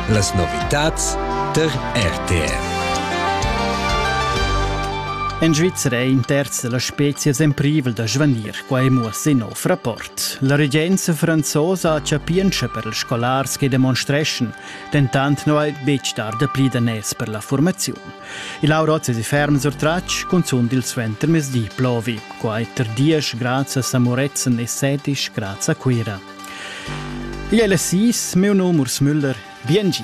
Las novitads tar RTR. En Svizra è in terz da las spezias en privel da svanir, quai muossa in nov rapport. La regenza franzosa chapientscha per ils scolars che demonstreschan, dentant non è betg dar dapli daners per la formaziun. Il Aurozia di ferm surtratg, cunzunt il suentermezdi plovi, quai tar dies grazie a Samoretzen e sedisch grazie a Cuira. Igl è las sis, meu nom Urs Müller. Biengi.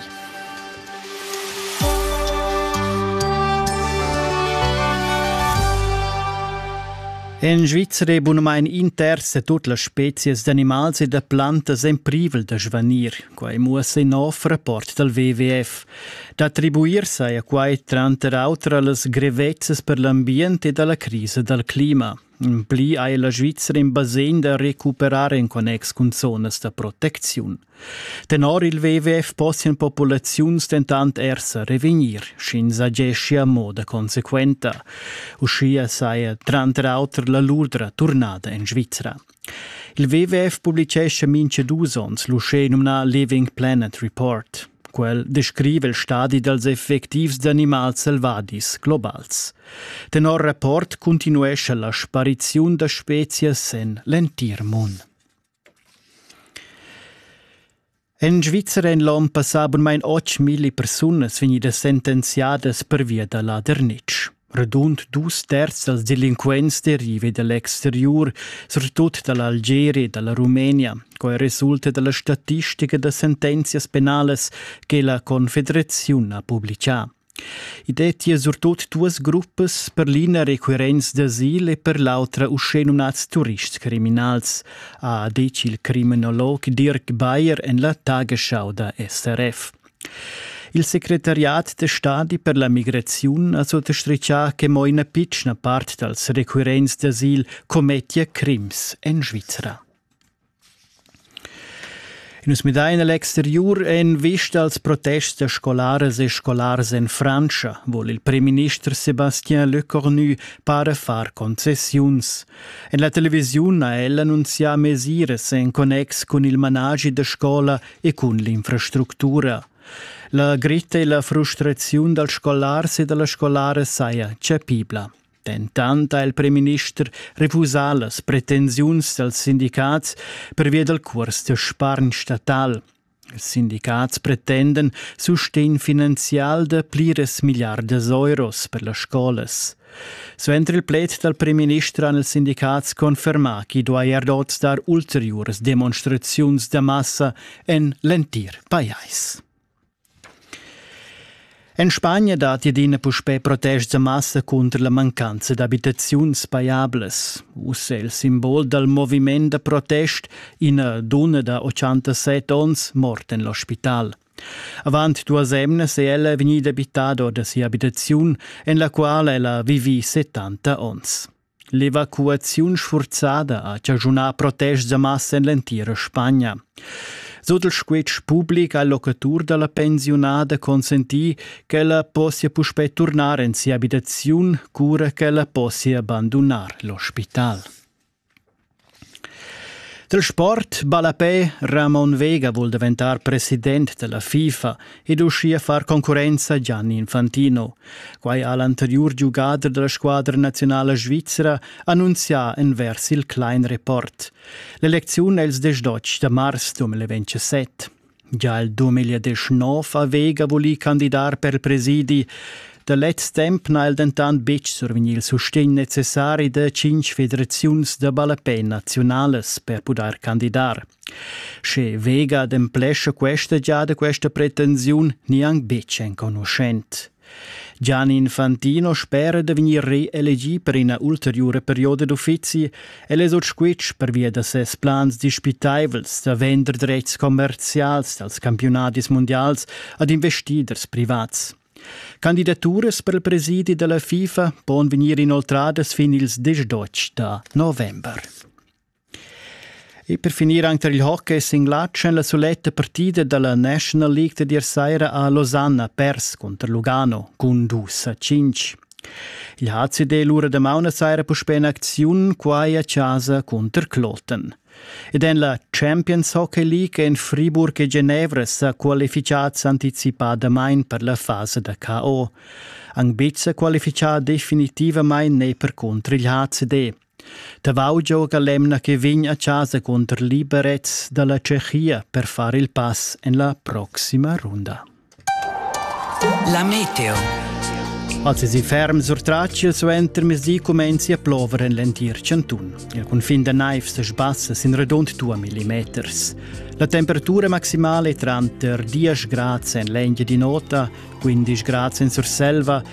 En Svizzera è bunamain inters tut las spezias d'animals e da plantas en privel da svanir. Quai muossa in nov rapport dal WWF. D'attribuir-se a quai tranter auter a las grevezzas per l'ambient e da la crisa dal clima. Pli ei la Svizra in basegn da recuperar en connex cun zonas da protecziun. Tenor il WWF possian populaziuns dentant ersa revegnir, sch'ins ageschia mo da consequenta. Uschia saja tranter auter la Lurdra turnada en Svizra. Il WWF publicescha mincha dus ons l'uschè nomnà Living Planet Report. Quel descrive il stadi dals effectivs d'animals selvadis globals. Tenor rapport cuntinuescha la spariziun da spezias en l'entir mund. En Svizzera èn l'onn passà bunmain 8.000 persunas vegnidas sentenziadas pervia da ladernitsch. Radund dus terz dals delinquents deriva da l'exteriur, surtut da l'Algeria e da la Rumenia. Quai resulta da la statistica da sentenzias penalas che la Confederaziun ha publicà. I dettia surtut duas gruppas, per l'ina requirents d'asil e per l'autra uschè numnads turists criminals, ha detg il criminolog Dirk Bayer en la Tagesschau da SRF. Il secretariat da stadi per la migraziun ha sottastritgà che mo ina pitschna part dals requirents d'asil commettia crims en Svizra. Nus midain a l'exteriur e en vista als protests da scolaras e scolars en Frantscha vul il primminister Sébastien Lecornu para far concessiuns. En la televisiun ha el annunzià mesiras en connex cun il managi da scola e cun l'infrastructura. La gritta e la frustraziun dals scolars e da las scolaras saja chapibla. Dentant ha il primminister refusà las pretensiuns dals sindicats pervia dal curs da spargn statal. Ils sindicats pretenden sustegn finanzial da pliras milliardas euros per las scolas. Suenter il pled dal primminister han ils sindicats confermà ch'i duaja dot dar ulteriuras demonstraziuns da massa en l'entir pajais. En Spagna datti adina puspè protest da massa cunter la mancanza d'abitaziuns pajablas. Uss è il simbol dal moviment da protest ina dunna da 87 onns morta en l'ospital. Avant duas emnas è ella vegnida abitada or da sia abitaziun, en la quala ella vivi 70 onns. L'evacuaziun sfurzada ha chaschunà protests da massa en l'entira Spagna. Sut il squitsch public ha il locatur da la pensiunada consentì ch'ella possia puspè turnar en sia abitaziun, cura ch'ella possia bandunar l'ospital. Dal sport ballapè Ramon Vega vul daventar president da la FIFA ed uschia far concurrenza a Gianni Infantino. Quai ha l'anteriur giugader da la squadra nazionala svizra annunzià envers il Klein Report. L'elecziun è ils desch da mars 2027. Gia il 2019 haveva voli candidar per presidi. Da lez temp n'ha el dentant betg survegnì il sustegn necessari da cinq federaziuns da ballapè naziunalas per pudair candidar. Sche Vega ademplescha questa giada questa pretensiun, nieanc betg enconuschent. Gianni Infantino spera da vegnir reelegì per ina ulteriura perioda d'uffizi. El è sut squitsch pervia da ses plans dispitaivels da vender dretgs commerzials dals campiunadis mundials ad investiders privats. Candidaturas per il presidi della FIFA pon vegnir inoltradas fin ils 18 da november. E per finir anche tar il hockey è singlatsch en la suletta partida da la National League da dir saira a Losanna pers cunter Lugano cun dus a cinc. Il HCD l'ura da mauna saira puspè in acziun quai a casa cunter Kloten. Ed en la Champions Hockey League en Friburg e Genevra sa qualificats anticipadamain per la fasa da KO. Angbizza qualifichà definitivamain ne per contro il HCD. Tavau gioga l'emna che vegn a chasa cunter Liberec dalla Tschechia per far il pass en la proxima runda. La meteo. Als es i ferm surtratg il suentermezdi comenzi a plover en l'entir cantun. Il cunfin da naivs sbassa sin redund 2 millimeters. La temperatura maximale tranter 10 grads en l'Engia di Nota, 15 grads en Surselva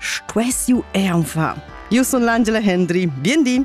Stuess jeu aunc far? Jeu sun l'Angela Hendry. Bien di!